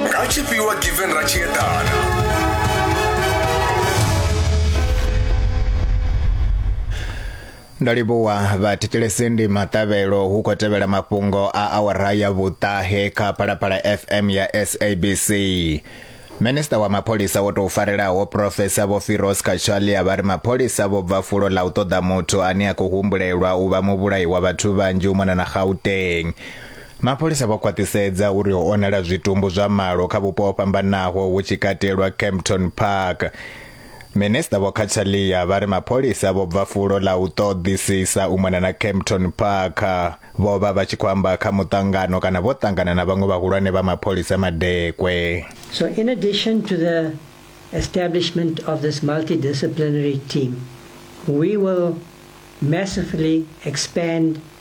rachipfiwa given rachiedana ndo livhuwa vhathetshelesi ndi maṱavhelo hu khou tevhela mafhungo a awara ya vhuṱahe kha phalaphala fm ya sabc minista wa mapholisa wo tou farelaho profesa vho firos kachalia vha ri mapholisa vho bva fulo ḽa u ṱoḓa muthu ane a khou humbulelwa u vha muvhulayi wa vhathu vhanzhi u mona na gauteng Mapholisa vho khwaṱhisedza uri ho onala zwitumbu zwa malo kha vhupo ho fhambanaho hu tshi katelwa Kempton Park. Minisiṱa Vho Cachalia vha ri mapholisa vho bva fulo ḽa u ṱoḓisisa u mona na Kempton Park. Vho vha vha tshi khou amba kha muṱangano kana vho ṱangana na vhaṅwe vhahulwane vha mapholisa Madekwe. So in addition to the establishment of this multidisciplinary team, we will massively expand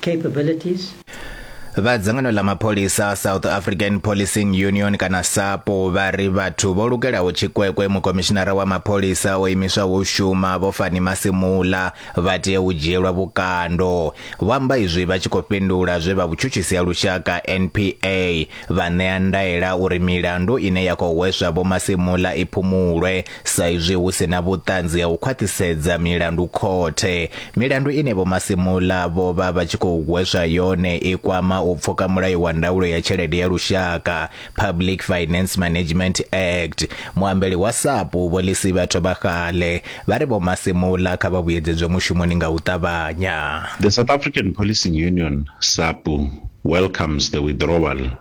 capabilities. Vha dzangano ḽa mapholisa South African Policing Union kana SAPO vha ri vhathu vho lugelaho tshikwekwe mukomishinara wa mapholisa o imiswaho u shuma vho Fani Masimula vha tea u dzhielwa vhukando. Vho amba izwi vha tshi khou fhindula zwe vha vhutshutshisi ha lushaka NPA vha ṋea ndaela uri milandu ine ya khou hweswa Vho Masimula i phumulwe sa izwi hu si na vhuṱanzi ha u khwaṱhisedza milandu khothe. Milandu ine Vho Masimula vho vha vha tshi khou hweswa yone i kwama u pfuka mulayo wa ndaulo ya tshelede ya lushaka, Public Finance Management Act. Muambeli wa SAPU Vho Lisiba Thobagale vha ri Vho Masimula kha vha vhuyedzedzwe mushumoni nga u ṱavhanya. The South African Policing Union, SAPU, welcomes the withdrawal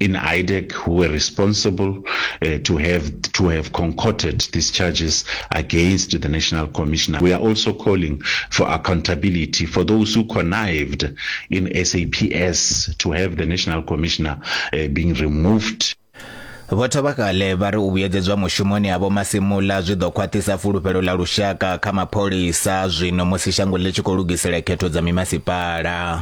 in IDEC who were responsible uh, to have to have concocted these charges against the National Commissioner. We are also calling for accountability for those who connived in SAPS to have the National Commissioner uh, being removed. vho thovhakale vha ri u vhuyedzedzwa mushumoni ha vho masimula zwi ḓo khwaṱhisa fulufhelo ḽa lushaka kha mapholisa zwino musi shango ḽi tshi khou lugisela khetho dza mimasipala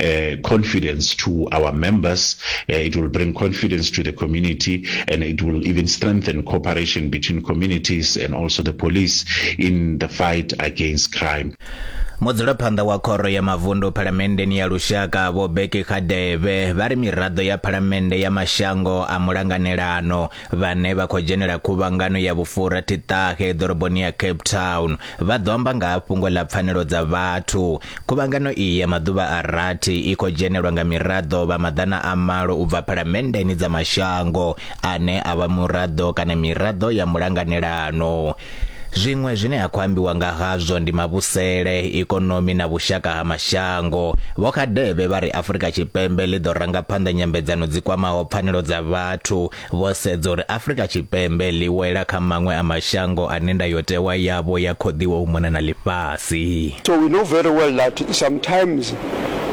uh, confidence to our members, uh, it will bring confidence to the community, and it will even strengthen cooperation between communities and also the police in the fight against crime. mudzulaphanḓa wa khoro ya mavundu phalamenndeni ya lushaka vho beki khadeve vha ri miraḓo ya phalamennde ya mashango a mulanganelano vhane vha khou dzhenela khuvhangano ya vhufura thiṱahe ḓoroboni ya cape town vha ḓo amba nga ha fhungo ḽa pfanelo dza vhathu Khuvhangano iyi ya maḓuvha a rathi i khou dzhenelwa nga miraḓo vha maḓana a malo u bva phalamenndeni dza mashango ane a vha muraḓo kana miraḓo ya mulanganelano. Zwiṅwe zwine ha khou ambiwa nga hazwo ndi mavhusele, ikonomi na vhushaka ha mashango. Vho Kgadebe vha ri Afrika Tshipembe ḽi ḓo ranga phanḓa nyambedzano dzi kwamaho pfanelo dza vhathu, Vho sedza uri Afrika Tshipembe ḽi wela kha maṅwe a mashango ane ndayotewa yavho ya khoḓiwa u mona na ḽifhasi. So we know very well that sometimes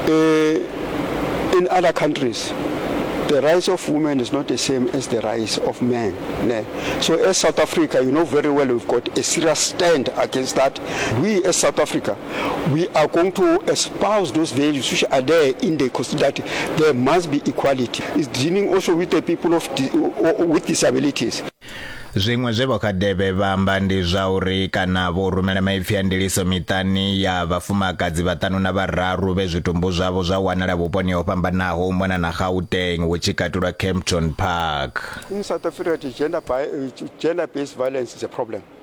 in other countries the rights of women is not the same as the rights of men. Ne? So as South Africa, you know very well we've got a serious stand against that. We as South Africa, we are going to espouse those values which are there in the constitution that there must be equality. It's dealing also with the people of di- with disabilities. zwiṅwe zwe vho khadebe vha amba ndi zwa uri kana vho rumela maipfi a ndiliso miṱani ya vhafumakadzi vhaṱanu na vhararu vhe zwitumbu zwavho zwa wanala vhuponi ho fhambanaho u mona na gauteng hu tshi katulwa campton park In South Africa, the gender, bi- uh, gender-based violence is a problem.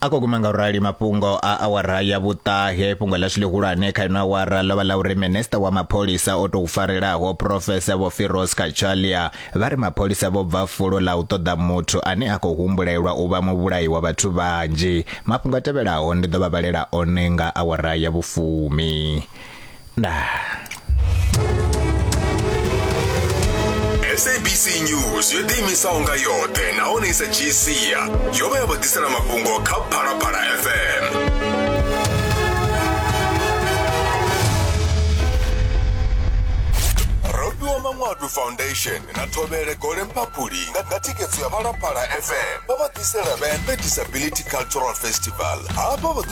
a ko guma nga u rali mafhungo a awara ya vhuṱahe fhungo ḽa tshilihulwane kha ino awara ḽo vha ḽa uri minista wa mapholisa o tou farelaho profesa vho firos kachalia vha ri mapholisa vho bva fulo ḽa u ṱoḓa muthu ane a khou humbulelwa u vha muvhulayi wa vhathu vhanzhi mafhungo a tevhelaho ndi ḓo vha vhalela one nga awara ya vhufumi sabc news yo ḓiimisaho nga yoṱhe nahone i sa dzhii sia yo vha ya vho ḓisela mafhungo kha phalaphala fm robiwa manwadu foundation na thovhele gole mphaphuli nga nga thikedzo ya phalaphala fm vha vha ḓisela vhembe disability cultural festival hafha vha ḓo